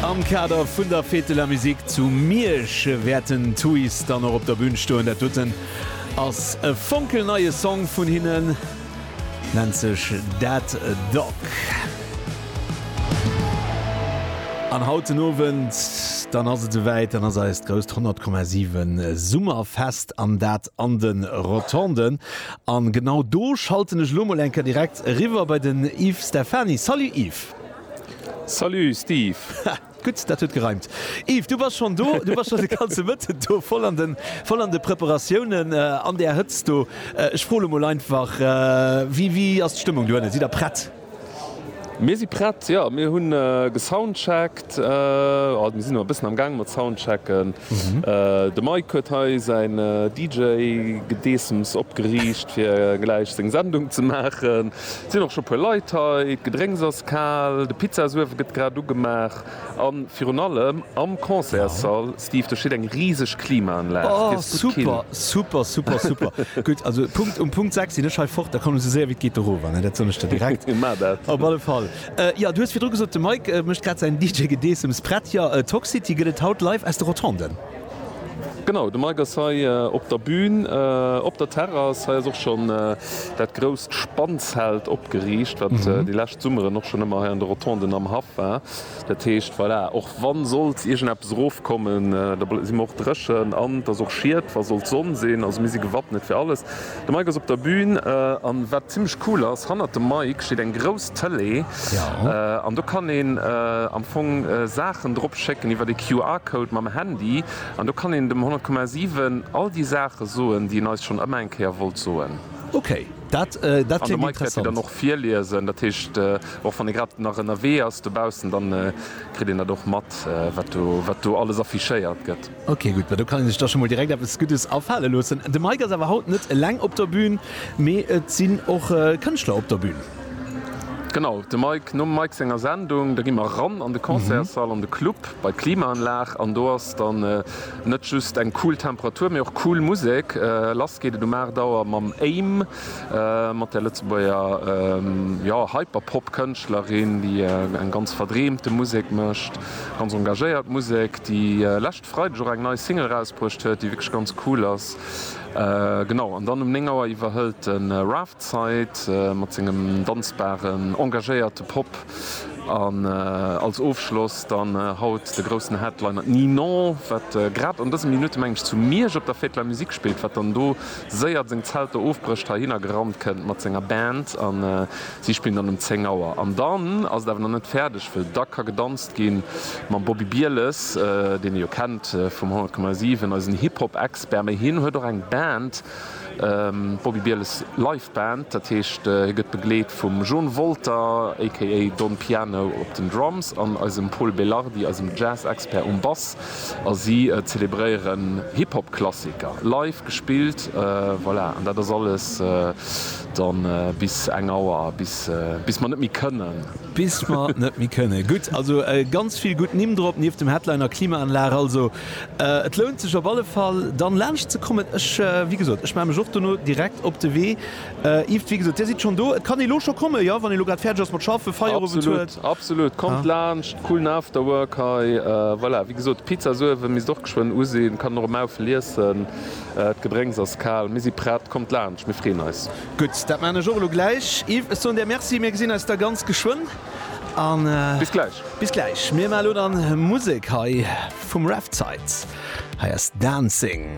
Am Kader vun der Fête de la Musique zu Miersch wäerten Tooys dann och op der Bün stoen. Dat doten ass e fonkelneie Song vun hinnen, nennt sech Dead Dog. An haut den Owend dann ass et souwäit, dann ass eist grousst 100,7 Summerfest an dat an de Rotonden. A genau do schalten ech elo mol eng Kéier direkt eriwwer bei den Yves Stephany. Salut Yves! Salut Steve! Ha, gutt, dat huet gereimt. Yves, du bass schonn do, du bass schonn de ganze Mëtten do, voll an de, voll an de Preparatiounen, an där Hëtzt do. Ech froe elo mol einfach, Wéi, wéi ass d'Stëmmung dohinne? Sidd Der prett? Mir si prett, jo. Mir hu gesoundcheckt. Also mir sinn nach e bëssen am Gaang mat soundchecken. De Mike huet hei säin DJ-Gedeessems opgeriicht, fir gläich seng Sendung ze maachen. Et sinn och scho e puer Leit hei. D'Gedrénks ass kal. De Pizzasuewe gëtt grad ugemaach. A virun allem am Concertssall, Steve, do steet eng riseg Klimaanlag. Dir ass gutt kill. Oh, super, super, super, super! Gutt, also Punkt, um Punkt 6 sinn ech hei fort. Da kommen esou séier wéi et geet erover, ne? Dat soen ech der direkt. Mir maachen dat. Op alle Fall. Jo, du hues virdru gesot, de Mike mécht grad säin DJ-Gedeessems prett. Jo, Toxcity gëtt et haut live aus de Rotonden. Genau, de Mike ass hei op der Bühn. Op der Terrass hei ass och schonn dat grousst Spannzelt opgeriicht, wat déi lescht Summeren och schonn ëmmer hei an de Rotonden am Haff war. Dat heescht, voilà, och wa sollt iergendeppes erofkommen, da si mer och dréchen an et ass och Schied, wa sollt Sonn sinn. Also mir si gewappnet fir alles. De Mike ass op der Bühn an wat zimlech cool ass, hannert dem Mike steet eng grouss Tëlee an do kann een am Fong Saachen drop schécken iwwer e QR-Code mam Handy an do kann een dem 100,7 all déi Saache soen, déi en eis schonn ëmmer eng Kéier wollt soen. Ok, dat kléngt interessant. An de Mike wäert déi dann och virliesen. Dat heescht, och wann ee grad nach ënnerwee ass dobaussen, da kritt een dat och mat, wat do alles affichéiert gëtt. Ok gutt, ma do kann een sech da scho mol direkt eppes Guddes afale loossen. De Mike ass awer haut net eleng op der Bühn, mee et sinn och Kënschtler op der Bühn. Genau, de Mike, nom Mike senger Sendung, da gi mer eran an de Concertssall, an de Club bei d'Klimaanlag an do ass dann net just eng cool Temperatur, mee och cool Musek. Lass geet et um 8 Auer mam Aim, mat der Lëtzebuerger, jo, Hyperpop-Kënschtlerin, déi eng ganz verdreemte Musek mécht. Ganz engagéiert Musek, déi lescht Freideg och eng nei Single rausbruecht huet, déi wierklech ganz cool ass. Genau, an dann um 9 Auer iwwerhëlt de Raft d'Zeit mat sengem danzbaren, engagéierte Pop. An als Ofschloss dann haut de groussen Headliner, d'Ninon, wat grad an dëse Minutte, mengen ech, zu Miersch op der Fête de la Musique spillt, wat dann do séier seng Zelter ofbrécht, heihinner gerannt kënnt mat senger Band an Si spillen dann um 10 Auer. An dann ass et awer nach net fäerdeg, wëll da ka gedanzt gi mam Bobby Bieles, deen ee jo kennt vum 100,7, eisen Hip-Hop Expert. Mee hien huet och eng Band, d'Bobby Bieles Live Band. Dat heescht, hie gëtt begleet vum John Wolter aka Don Piano op den Drums an eisem Pol Belardi, eisem Jazz Expert um Bass. A si zelebréieren Hip-Hop-Klassiker, live gespillt. Voilà, an dat ass alles da bis eng Auer, bis mer net méi kënnen. Bis mer net méi kënnen. Gutt, also ganz vill gutt Nimm drop, nieft dem Headliner Klimaanlag. Also et lount sech op alle Fall, dann laanscht ze kommen. Ech, wéi gesot, ech maache mech och dono direkt op de Wee. Yves, wéi gesot, Dir sidd schonn do. Et kann ee lo scho kommen, jo, wann ee lo grad fäerdeg ass mat schaffen, Feierowend huet. Absolut, absolut. Kommt laanscht, coolen Afterwork hei. Voilà, wéi gesot, d'Pizzasuewe misst och geschwënn u sinn. Kann och e Maufel iessen. D'Gedrénks ass kal. Mir si prett. Kommt laanscht, mir freeën eis. Gutt, dat maachen ech och elo gläich. Yves, ech soen der Merci. Mir gesinn eis da ganz geschwënn. A bis gläich. Bis gläich. Mir maache lo dann Musek hei vum Revsites. Hei ass Dancing.